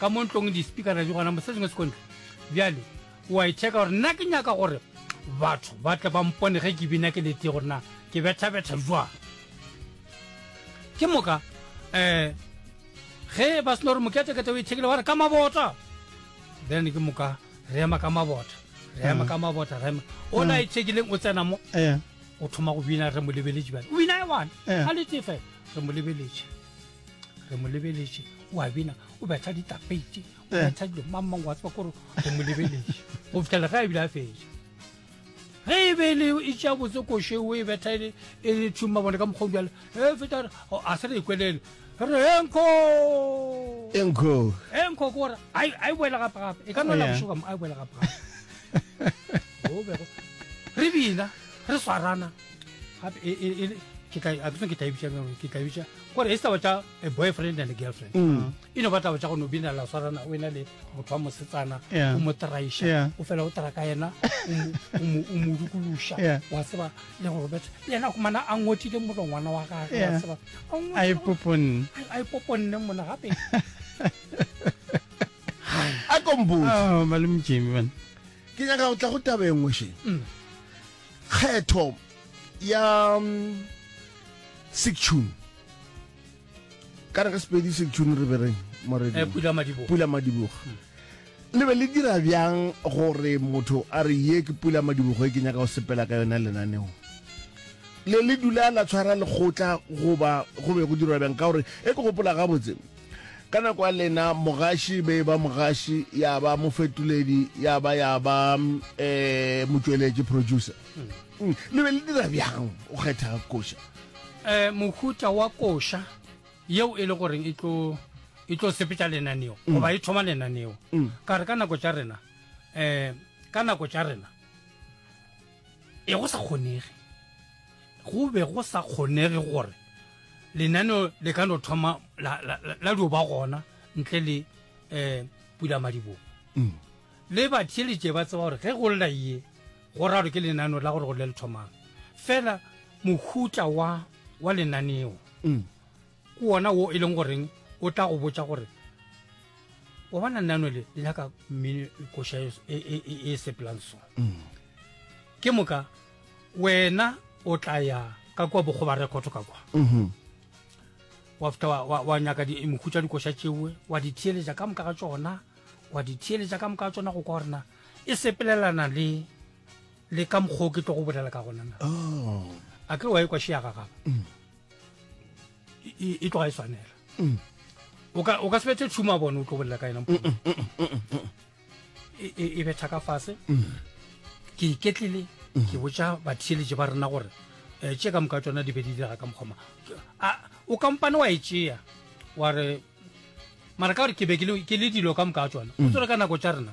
ka mo ntlong dispikara di gona mosetseng se kontle bjale wa e checka gore nna ke nyaka gore batho ba tle ba mpone ge ke bina ke lete gore na ke bethabetha jwang ke moka um ge ba seno gore moketekete o ithekile wa re ka mabota then ke moka re ema ka mabota re ema ka mabota re ema o la ithekileng o tsena mo o thoma go bina re mo lebeletše bjale o bina e one a lete fela re mo lebeletše re mo lebeletše o a bina o betha ditapeite o eh. betha dilo mang mang wa tseba kore re mo lebeletše go fitlhela ge a bile a fetša ge e be e le e tšea botse koše o e betha e le e thuma bone ka mokgong jale e feta a se re e kwelele re re enko enko enko ke gore a e boela gape gape e ka nola oh, bošoka mo a e boela gape gape o bego re bina re swarana gape e, e, e, ke tla a ke tla bitsa ke tla bitsa gore e saba tsa a boyfriend and a girlfriend mm. e no batla batla go no bina la swarana o ena le motho wa mosetsana o mo traisha o fela o tra ka ena o mo dukulusha wa seba le go robetsa le ena kumana a ngotile motho ngwana wa gagwe wa seba a ipoponne a ipoponne mona gape a kombo oh, malum jimi bana ke nyaka o tla go tabengwe she mm. Kgetho ya Sektšhuni ka re ka sepedi Sektšhuni re bereng moredi eh, pula madiboga pula madiboga hmm. le be le dira bjang gore motho a re ye ke pula madibogo e ke nyaka go sepela ka yona lenaneo le le dula la tshwara lekgotla goba go be go dirwa bjang ka gore e ke gopola gabotse Ka nako ya lena mogaši be ba mogaši ya ba mofetoledi ya ba ya ba um motšweletši producer hmm. Hmm. le be le dira bjang o kgetha koša um mohuta wa koša yeo e le goreng e tlo e tlo sepetša lenaneo hmm. goba e thoma lenaneo ka re ka nako tša rena um ka nako tša rena e go sa kgonege go be go sa kgonege gore lenaneo le ka no thoma la dio ba gona ntle le um pula madibogo mm. le batheletše ba tseba gore ge go lela ye go raro ke lenaneo la gore go le le thomang fela mohuta wa wa lenaneo mm. Ke wona wo e leng goreng o tla go botša gore o bona nano le le nyaka mmino koša e, e, e, e, e sepelang so mm. ke moka wena o tla ya ka kwa bogoba rekoto ka kwa mm-hmm. wa feta wa nyaka mokhutsa dikoša tšeoe wa di theeletša ka moka ga tsona wa di theeletša ka moka ga tsona go kwa gorena e sepelelana le le ka mokgwa o ke tlo go bolela ka gonana oh. a ke wa e kwa šeaga gaba mm. e tloga e swanela mm. o ka sebetse tšhumo a bone o tlo bolela ka ena mm, mm, e, e, e betha ka fase ke iketlile ke botša batheeletše ba rena gore um eh, tše ka moka tsona di be di dira ka mokgoma o kampane wa e tšea wa re mara ka gore ke be ke le dilo ka moka tsona o tsere ka nako tša rena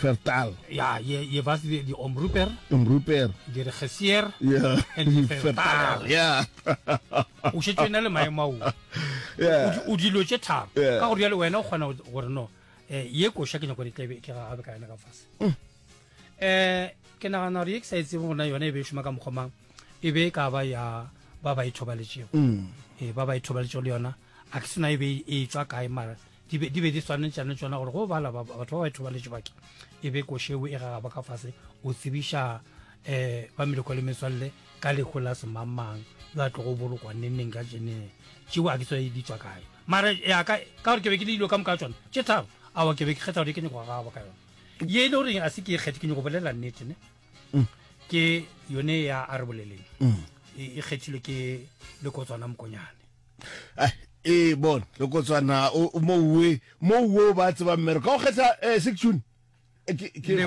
Fertal. Ja, je, je was die, die omroeper. Omroeper. Die regisseur. Ja. En die Fertal. Ja. o šetšwe na le maemo ao o dilo tše tharo ka gore jale wena o kgona gore no um ye koša ke nyako ditlebe ke gagabe ka yona ka fase um mm. eh, ke nagana gore ye ke sa e tsebe gona yone e be e šoma ka mokgomang e be e ka ba ya ba ba ithobaletšego mm. ee eh, ba ba ithobaletšego le yona a ke sena e be e tswa kae mara di be di, be di swanetšane tšona gore go bala batho ba ba ithobaletše bake e be košewe e gagaba ka fase o tsebiša um ba meleko le metswalle ka lekgo la semangmang yo a tlogo bolokwa nenneng ka jeneng tšeo a ke tswa e di tswa kae mara yaka ka gore ke be ke le dilo ka moka tsona tše tharo awa ke be ke kgetha gore ke nyako gagaba ka yone ye e le goreng a se ke e kgethe ke nyako bolela nnete ne mm. ke yone ya a re boleleng mm. e, e kgethilwe ke lekotswana mokonyane eh, e bon lekotswana mouwe mouwe o ba tseba mmero ka go kgetha eh, section eh, ke